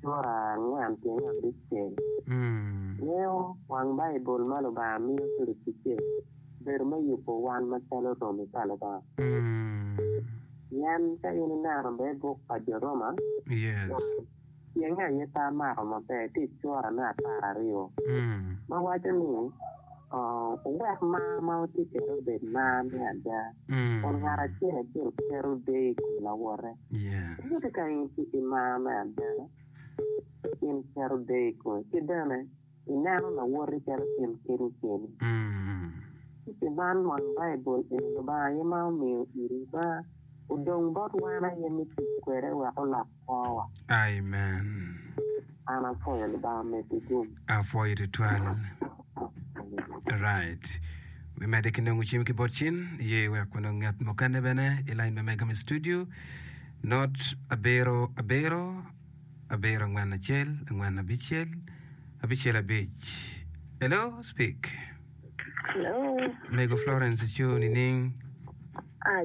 Sura angwen ki nge abic cen miyo wang Baibul ma Lubanga miyo ki luticce bedo me yubo wan macalo romi pa Lubanga. Pien ka in ineno bene buk pa Jo Roma, cenge aye pe amako maber tye i sura me apar aryo ma waco ni, Wuwek mar ma wutye kwede obed mar me ada. kun ngat acel acel keto deyo i kom lawote. Ento ka in tye ki mar me ada, in iketo deyo i komi ki bene ineno lawoti calo in keni keni. Ci pi man wang Baibul eni Lubanga aye ma omiyo iri mar, odong bot wan aye me tic kwede wek olok kwowa. Amen. An apwoyo Lubanga medi dum. Apwoyo tutwal. Right. Wi mede ki nongo cim ki bot cin ye wek wano ngat mukene bene i lain me mega me studio. Not abiro abiro abiro angwen acel angwen abicel abicel abic. Hello, speak. Hello. Mego Florence Cho nining? Ah,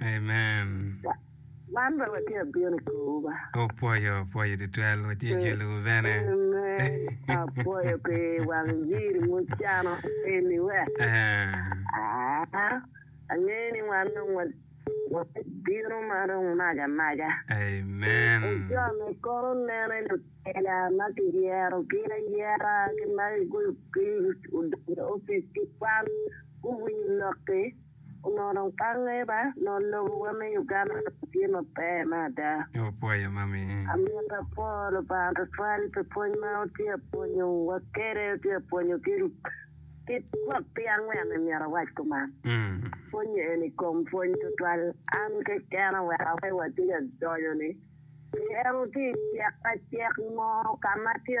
Amen. Man bene watye abino i kowu ba. Opwoyo, opwoyo tutwal. Watye jolowu bene. Amen. Apwoyo pi wang jiri mucano eni we. Ah. Ah, Angeyo ni wan dong wa- wabino ma dong maga maga. Amen. Ojone kono nene lutela ma kiyero ki ayera ki ma gigoyo piny odonyo i opic ki kwan guwinyo lokki onongo dong tange ba, nongo lobowa me Uganda dong tye maber me ada. Wapwoyo mami i. Amito apwoo Lubanga twatwal pi pwony ma wutye ka pwonyo wa kede, wutye ka pwonyo ki ki twak pi angwen ni myero awac kuman. Pwonye eni i kom pwony twatwal an keken oweka wai watye ka donyo ni pi en wutye i cek acek mo ka ma tye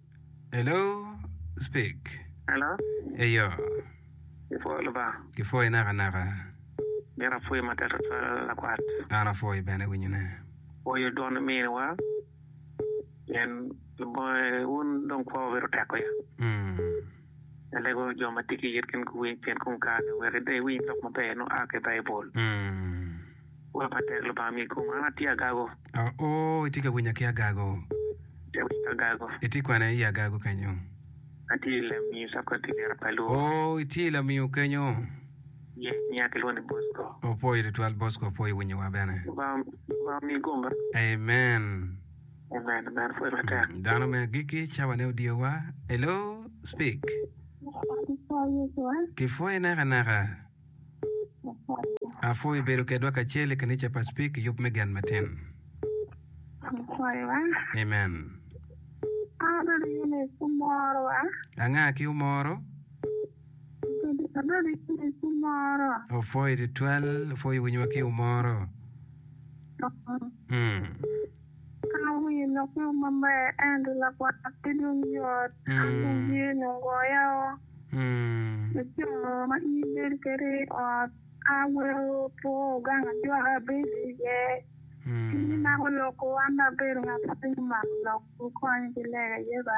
Hello, speak. Hello? Eyo. Ipwoyo Lubanga? Gipwoyi naka naka. Mito apwoyi matek tutwal lakwat. An apwoyi bene winyone. Pwoyo dwon miniwa. Pien Lubanga wun dong kwowa bedo tek wiya. Mm. Ilego jo ma tye ki yit gin guwiny pien kong kare wek ida iwiny lok maber nongo a ki i Baibul. Wek ma tek Lubanga miyi kom. An atye agago. O, itye ka winya ki agago. Atye ka winya ki agago. Itye kwene i agago kenyo? Atye i Lamiu, South Korea, tic liro pa i Luo. O, itye i Lamiu kenyo? Ye, nyinga kilwongo ni Bosco. Opwoyi tutwal Bosco, opwoyi winyowa bene. Lubanga omiyi kom bene. Amen. Dano me agikki, cawane odyowa. Hello, speak. Kipwoyi nakanaka. Apwoyo ibedo kedwa kacel i kanica pa Speak i yub me gen matin. Amen. Anga ki omoro? Opwoyo tutwal, opwoyo winyowa ki omoro. Mm. Ka awiyo lok mo maber ento lagwar pe dong yot, an dong yer nongo goya oo. Laco ma in ibedo kwede i ot ka weko two gang ajwaka abedo iye. In imako lok oo, an dong abedo ngat ma piny omako lok. Wukonya ki lega aye ba.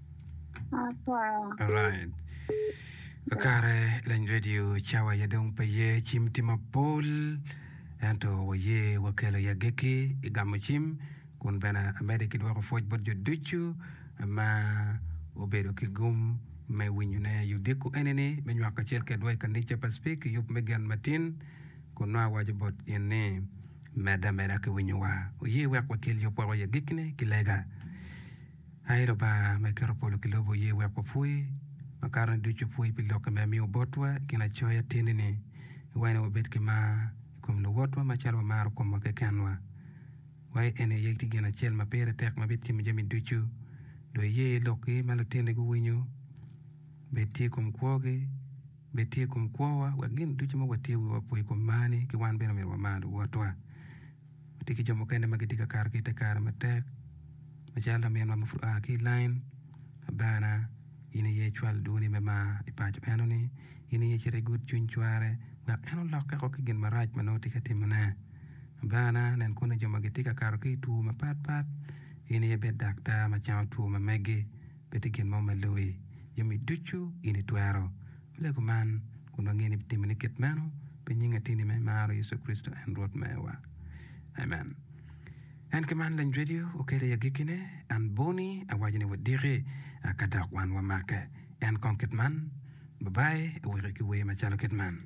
Alright. Kakare lany radio cawa ya dong pe ye cim tye mapol ento waye wakelo ya geki i gamo cim kun bene amede ki dwoko pwoc bot jo ducu ma obedo ki gum me winyone i odiko enini me nywako kacel kedwa i kanica pa Spik i yub me gen matin kun nongo awaco bot in ni medde ameda ki winyowa. Wuye wek wakel yub woko ya gikine ki lega. Aye Lubanga ma eketo polo ki lobo oye wek wapwoc makato ni ducu pwoc pi lokke ma imiyo botwa i kin acoya atyenini i wacine wabed ki mar i kom luwotwa macalo wamaro komwa kekenwa. Wa i eni aye tye gin acel ma pire tek ma bitimo jami ducu. Dong iye i lokki ma lutini guwinyo, bed tye i kom kwogi, bed tye i kom kwowa wek gin ducu ma watiyo wiwa opwo i kom marni ki wan bene omyero wamar luwotwa. Watye ki jo mukene ma gitye ka kato ki i te kare matek macalo laminwa ma pud oa ki i lain, Abana, in aye icwal dwoni me mar i paco eno-ni, in aye icit igut cwiny cware wek en olokke woko ki gin marac ma nongo tye ka timone. Abana, nen kunu jo ma gitye ka kato ki i two mapatpat, in aye bed daktar ma cango two ma megi. Pe tye gin mo ma loi, jami ducu in itwero. Walego man, kun wangeyo ni ibitimo ni kit meno pi nying Ateni ma imaro, Yecu Kricito, en Rwot mewa. Amen. En ki man lany redio okelo i agikkine, an boni awaco ni wadiki, aka dok wan wamake. En kong kit man. Babai, aweki ki wer macalo kit man.